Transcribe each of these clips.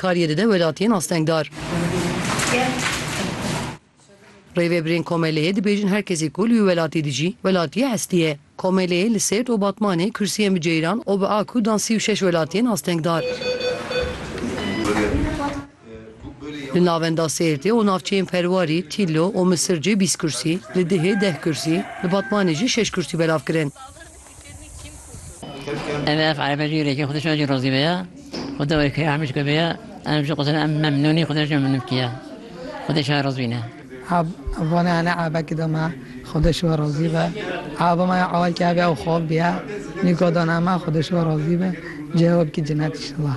Kariyê dide welatiyên astengdar. Rêvebirên Komeleyê dibêjin her kesî ku li wî welatî dijî, welatiyê hestî ye. Komeleyê li Sêrt û Batmanê kursiyên bi ceyran û bi a ku dan sî û şeş welatiyên astengdar. Li navenda Sêrtê û navçeyên Perwarî, Tîlo û Misircê bîst kursî, li Dihê deh kursî, li Batmanê jî şeş kursî belav kirin. Em ê ev eybê jî rêkê xwedişan jî razî be ya. Xweda wê keyê Amîşko be ya. Em ji qisên em memnûn î, xweda jî memnûn bike ya. Xwedê şaye razî wî ne. Eb, vane ene ebekî de me, xweda şiwe razî be. Ebe me ya ewelkî ebe ew xwe biya. Nîko dane me, xweda şiwe razî be. Cihê we bikî cinet înşellah.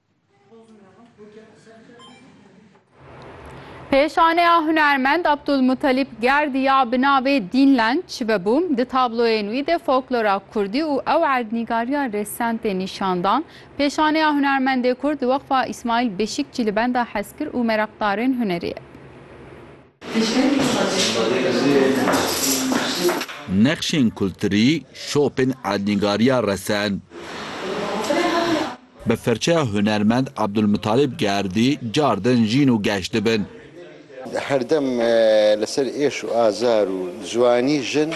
Pêşaneya hunermend Abdulmutalîb Gerdî ya bi navê Dînlen çi vebû? Di tabloyên wî de folklora Kurdî û ew erdnîgariya rêsend tê nîşan dan. Pêşaneya hunermendê Kurd di Weqfa Îsmaîl Beşîkçî li benda hezkir û mereqdarên hunerê ye. Nexşên kulturî, şopên erdnîgariya resend. Bi firçeya hunermend Abdulmutalib Gerdî car din jîn û geş dibin. Herdem li ser êş û azar û ziwanî jin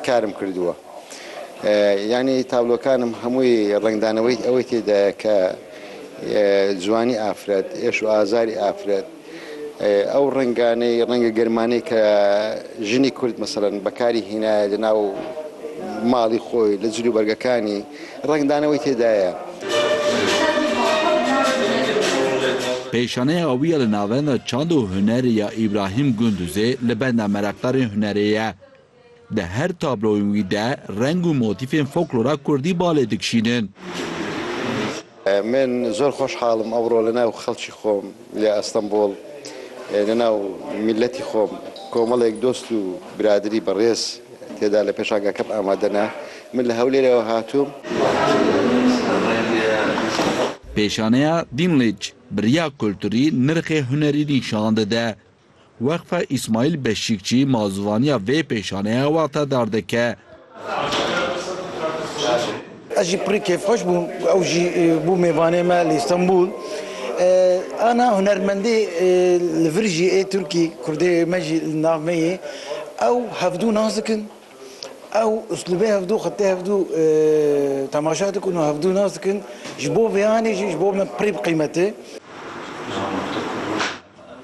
karim kirdiwe. Yanî tablokan im hemûyî rengdaneweyî ewê tê de ye ke ziwanî afiret, êş û azarî afiret. Ew renganê rengê germanê ke jinê kurd meselen bekarî hîne li nav malî xwe li cil û bergekanî rengdana wî tê de ye. Pêşaneya wî ya li navenda çand û hunerê ya Îbrahîm Gunduzê li benda mereqdarên hunerê ye. Di her tabloyên wî de reng û motîfên foklora kurdî balê dikişînin. Min zor xoşhal im ewro li nav xelkî xwe ya Estenbol, li nav mîletî xwe komelek dost û biradirî bi rêz têda li pêşangekim amade ne. Min li Hewlêrê we hatim. Pêşaneya Dinlîc bi riya kulturî nirxê hunerî nîşan dide. Weqfa Îsmaîl Beşîkçî mazûvaniya vê pêşaneya wexta dar dike. Ez jî pirî kêfxweş bûm ku ew jî bû mêvanê me li Îstenbûl. Ana hunermendê li vir jî ê Tirkî, Kurdê me jî li nav me yê. Ew hevdû nas dikin. Ew uslûbê hevdû, xetê hevdû temaşa dikin û hevdû nas dikin. Ji bo vêyanê jî ji bo me pirî bi qîmet e.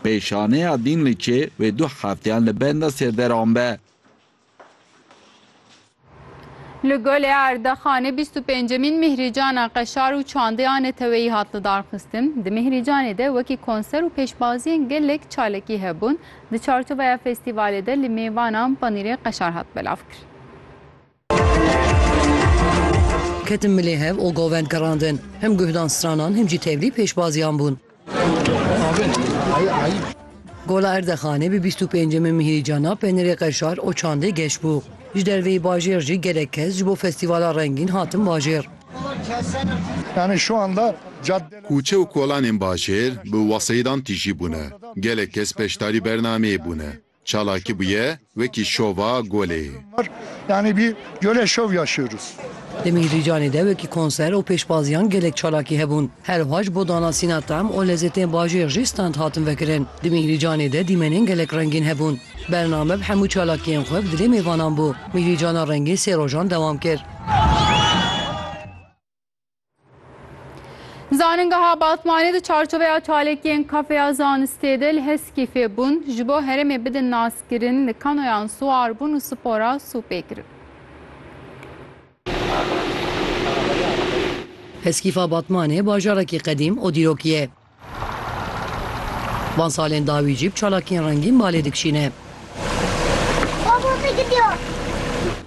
Pêşaneya Dînliçê wê du hefteyan li benda sêrderan be. Li Gole Erdexanê bîst û pêncemîn Mîhrîcana Qeşar û Çandeya Neteweyî hat lidarxistin. Di Mîhrîcanê de wekî konser û pêşbaziyên gelek çalakî hebûn. Di çarçoveya festîvalê de li mêvanan panîrê qeşar hat belavkirin. Ketin milê hev û govend girandin. Him guhdan stranan him jî tevlî pêşbaziyan bûn. Gola Erdexanê bi bîst û pêncemîn mihîrî cana penirê qeşar û çandê geş bû. Ji derveyî bajêr jî gelek kes ji bo festîvala rengîn hatin bajêr. Kûçe û kolanên bajêr bi weseyidan tîjî bûne. Gelek kes beşdarî bernameyê bûne. Çalakî bûye wekî şova golê. Yanî bî golê şov yaşyorûs. Li Mîhrîcanê de wekî konser û pêşbaziyan gelek çalakî hebûn. Her wiha ji bo danasîna tem û lezêtên bajêr jî stand hatin vekirin. Di Mîhrîcanê de dîmenên gelek rengîn hebûn. Bername bi hemû çalakiyên xwe bi dilê mêvanan bû. Mîhrîcana rengîn sê rojan dewam kir. Zanîngeha Batmanê di çarçoveya çalakiyên kafeya zanistê de li Heskî fêbûn ji bo herêmê bidin naskirin li kanoyan siwarbûn û spora sûpê kirin. Heskîfa Batmanê bajarekî qedîm û dîrokî ye. Van salên dawî jî bi çalakiyên rengîn malê dikişîne.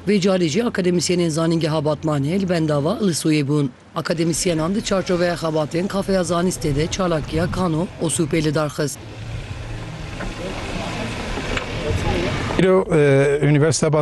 Vê carê jî akademîsyenên Zanîngeha Batmanê li benda va Ilisoyê bûn. Akademîsyenan di çarçoveya xebatên Kafeya Zanîstê de çalakiya Kano Osûpê lidar xist. Îro Unîversîteya Batmanê